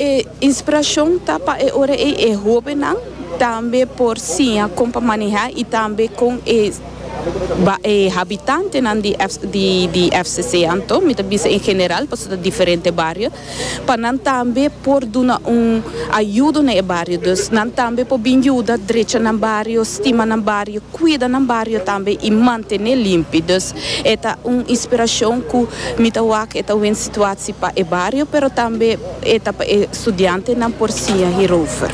E inspirashon ta pa e ora ei e hóbennan tambe por siña kon pa manehá i tambe kon e e habitantenan di di FCC anto mi ta bisa en general pasobra ta diferente bario pa nan tambe por duna un ayudo na e bario. Dus nan tambe por bin yuda drecha nan bario, stima nan bario, kuida nan bario tambe i mantené limpi. Dus e ta un inspirashon ku mi ta wak e ta wen situatsi pa e bario pero tambe. E ta pa e studiantenan por siña hierover.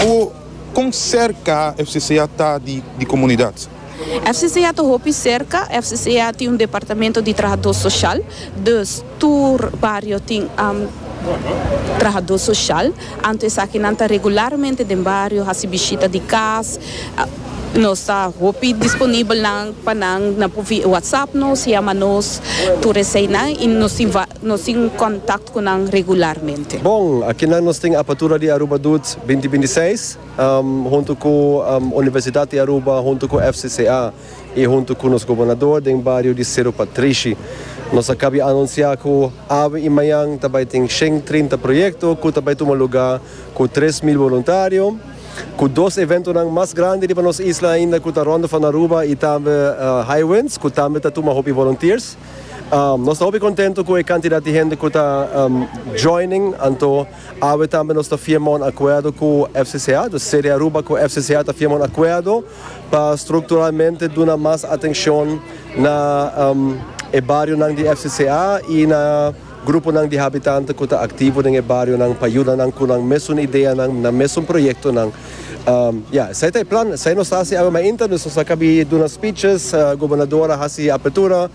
Cu con cerca FCCA ta di di comunidad? FCCA ta hopi cerca. FCCA tin un departamento di trahador social, dus tur bario tin trahador social. Anto esaki nan ta regularmente den bario haci bishita di cas. Nos ta hopi disponibel nan pa nan, nan por whatsapp nos, yama nos tur eseinan y nos tin Nos tin contact cu nan regularmente. Bon, akinan nos tin Apertura di Aruba Doet binti binti seis, hunto cu Universidad di Aruba, hunto cu FCCA y hunto cu nos Gobernador den bario di Cerro Patrishi. Nos a cabia anuncia cu awe y mayan ta bay tin shen trinta proyecto cu ta bay tuma luga cu tres mil voluntario, cu dos eventonan mas grandi riba nos isla ainda cu ta rondofan Aruba y tambe Highwinds cu tambe ta tuma hopi volunteers. Nos ta hopi contento cu e cantidad di hende cu ta joining, anto awe tambe nos ta firma un acuerdo cu FCCA, dus Sede Aruba cu FCCA ta firma un acuerdo pa structuralmente duna mas atencion na e barionan di FCCA y na. Gruponan di habitante cu ta activo den e barionan pa yuda nan cu nan mesun ideanan, nan mesun proyectonan. Ya, esai ta e plan, esai nos ta haci awe mainta, nos nos a cabi duna speeches, gobernador a haci apertura,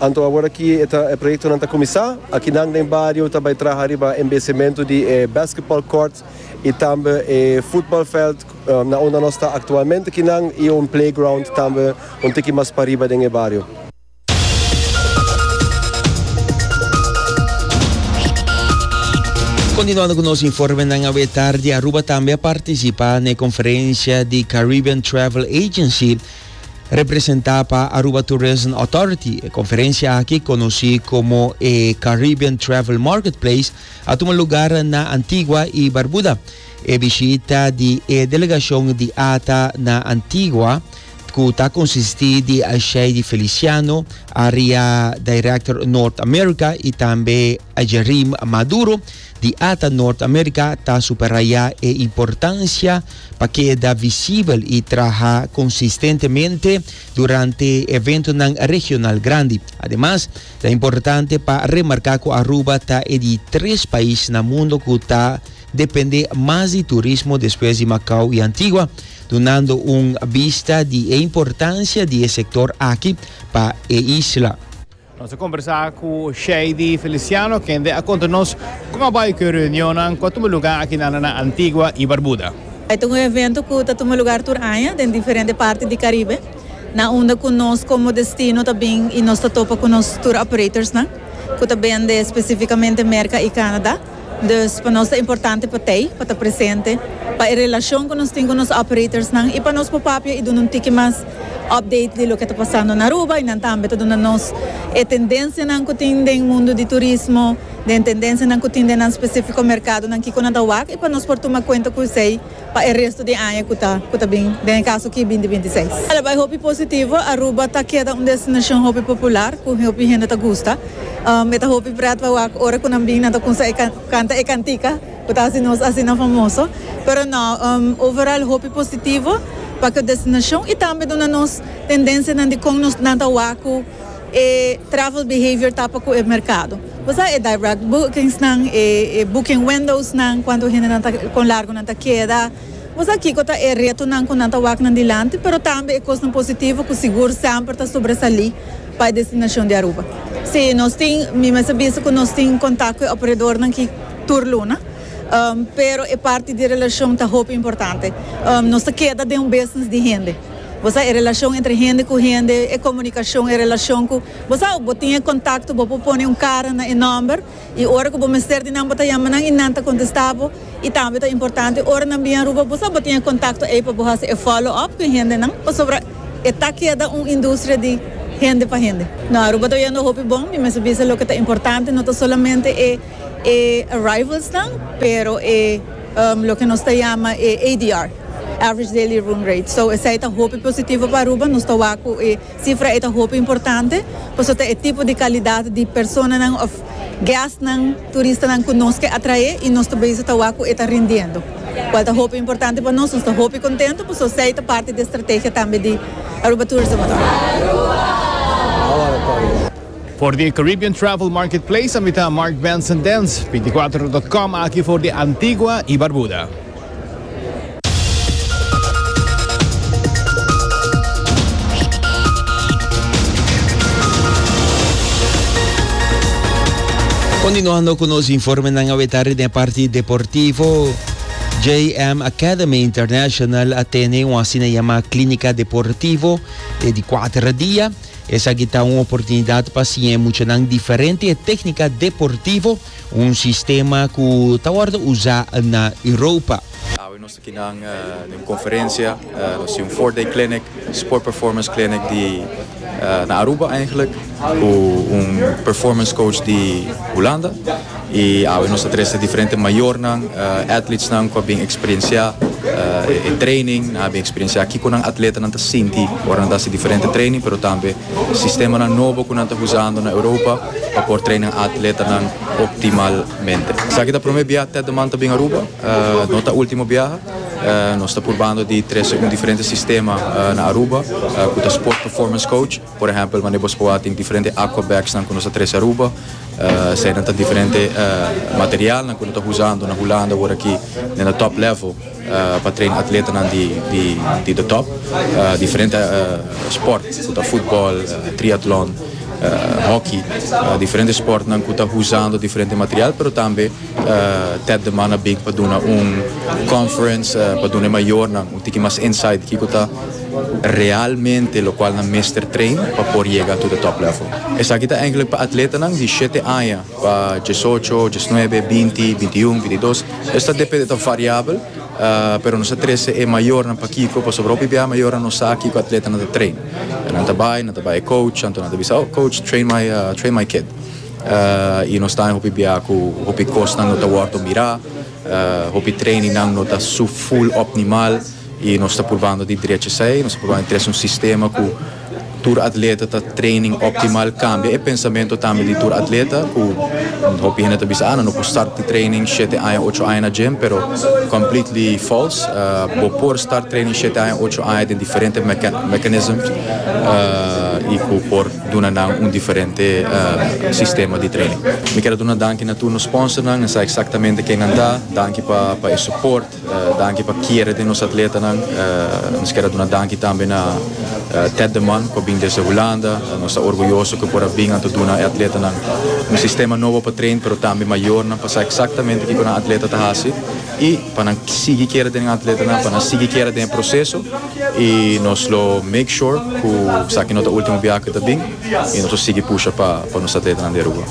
anto awor aki e ta, e proyectonan ta cuminsa. Aki nan den bario ta bay traha riba embecemento di e basketball court y tambe e voetbalveld na unda nos ta actualmente aki nan y un playground tambe un tiki mas pariba den e bario. Continuando cu nos informenan awe tardi, Aruba tambe a participa na e conferencia di Caribbean Travel Agency representa pa Aruba Tourism Authority. E conferencia aki, conoci como e Caribbean Travel Marketplace, a tuma lugar na Antigua y Barbuda. E bishita di e delegacion di ATA na Antigua cu ta consisti di Ashei di Feliciano, Area Director North America, y tambe Ajerim Maduro di ata North America ta superaya e importancia pa keda visibel y traha consistentemente durante eventonan regional grandi. Ademas, ta importante pa remarca cu Aruba ta e di tres pais na mundo cu ta depende mas di turismo despues di Macau y Antigua, dunando un bista di e importancia di e sector aki pa e isla. Nos a combersa cu Shady Feliciano, kende a conta nos con a bay cu e reunionnan cu a tuma lugar akinanda na Antigua y Barbuda. E ta un evento cu ta tuma lugar tur aña den diferente parti di Caribe, na unda cu nos como destino ta bin y nos ta topa cu nos tour operatorsnan cu ta bende specificamente Merca y Canada. Dus pa nos ta importante pa Tei pa ta presente pa e relacion cu nos tin cu nos operatorsnan y pa nos por papia y duna un tiki mas update di loke ta pasando na Aruba y nan tambe ta duna nos e tendencianan cu tin den mundo di turismo, den tendencianan cu tin den nan specifico mercadonan kico nan ta wak y pa nos por tuma cuenta cu esey pa e resto di e aña cu ta cu ta bin, den e caso aki binti binti seis. Ala bay hopi positivo, Aruba ta keda un destinacion hopi popular cu hopi hende ta gusta. E ta hopi pret pa wak ora cu nan bin nan ta cunsa e canta e cantica cu ta haci nos asina famoso. Pero no, overall hopi positivo pa cu destinacion y tambe duna nos tendencianan di con nos nan ta wak cu. E travel behavior ta pa ku e merkado. Bo sa e direct bookingsnan, e e booking windowsnan, kuantu hende nan ta kon largu nan ta keda. Bo sa kiko ta e retonan ku nan ta wak nan dilanti, pero tambe e kosnan positivo ku sigur semper ta sobresalí pa e destinashon di Aruba. Sí, nos tin, mi mester bisa ku nos tin kontak ku e operadornan ki tur luna, pero e parti di relashon ta hopi importante. Nos ta keda den un business di hende. Bo sa e relashon entre hende ku hende, e komunikashon, e relashon ku bo sa òf bo tin e kontakto bo por pone un kara na e nòmber i ora ku bo mester di nan bo ta yama nan i nan ta kontestá bo i tambe ta importante ora nan bin Aruba bo sa bo tin e kontakto ei pa bo hasi e follow up ku e hendenan pasobra e ta keda un industria di hende pa hende. No, Aruba ta oyendo hopi bon, mi mester bisa loke ta importante no ta solamente e e arrivals nan pero e loke nos ta yama e ADR. average daily room rate, so esei ta hopi positivo pa Aruba, nos ta wak cu e cifra ei ta hopi importante pasobra ta e tipo di calidad di personanan of guestnan, turistanan cu nos ke atrae y nos ta bezig ta wak cu e ta rindiendo, cual ta hopi importante pa nos, nos ta hopi contento pasobra esei ta parti di e strategia tambe di Aruba Tourism Authority. For di Caribbean Travel Marketplace a mita Mark Benson Dance, binticuater dot com aki for di Antigua y Barbuda. Continuando cu nos informenan aweta riba den e parti deportivo. JM Academy International a tene un asina yama Clínica Deportivo e di cuatro dia. Esaki ta un oportunidad pa siña e muchanan diferente e técnica deportivo un sistema ku ta wòrdu usá na Europa. Awe nos ta kinan den un konferensia, nos tin un four day clinic, sport performance clinic di na Aruba eigenlik, ku un performance coach di Hulanda, i awe nos ta trese diferente mayornan, atletsnan ku a bin eksperensiá e training, nan a bin eksperensiá kiko nan atletanan ta sinti ora nan ta hasi diferente training, pero tambe Sistemanan nobo ku nan ta usando na Europa pa por train nan atletanan optimalmente. Esaki ta promé biaha Ted de Man ta bin Aruba, no ta último biaha. Nos ta purbando di trese un diferente sistema na Aruba ku ta Sport Performance Coach. Por ehèmpel, manera boso por wak tin diferente aqua bagsnan ku nos ta trese Aruba. Eseinan ta diferente materialnan ku no ta usando na Hulanda wor aki den e top level. pa traina atletanan di de top diferente sport ku ta futbol triatlon hoki diferente sportnan ku ta huzando diferente material pero tambe ted de man a bin pa duna un conference pa duna e mayornan un tiki mas insight di kiko ta realmente lokual nan mester train pa por yega tu de top level esaki ta pa atletanan di shete aña Pa diesocho, diesnuebe, binti, bintiun, bintidos, es ta depende, ta variabel, pero nos ta trece e mayornan. Pakico? Pasobra hopi bia e mayornan no sa kico atletanan ta train. Nan ta bay, nan ta bay e coach, anto nan ta bisa, oh, coach, train my, train my kid. Y nos ta den hopi bia cu hopi cosnan no ta wordo mira, hopi trainingnan no ta su full opnimal y nos ta purbando di drecha esey, nos ta purbando di trece un sistema cu. Tur atleta ta training optimal cambia e pensamento tambe di tur atleta cu hopi hende ta bisa ah nan no por start di training shete aña ocho aña na gym pero completely false bo por start training shete aña ocho aña den diferente mechanisms y cu por duna nan un diferente sistema di training. Mi ker a duna danki na tur nos sponsornan nan sa exactamente kennan ta danki pa e support Danki pa kere den nos atletanan. Nos kier a duna danki tambe na Ted de Man ku a bin desde Hulanda. Nos ta orguyoso ku por a bin anto duna e atletanan un sistema nobo pa train pero tambe mayornan pa sa eksaktamente kiko nan atleta ta hasi i pa nan sigui kere den nan atletanan pa nan sigui kere den e proseso i nos lo make sure ku esaki no ta ultimo biaha ku ta bin i nos lo sigui pusha pa nos atletanan di Aruba.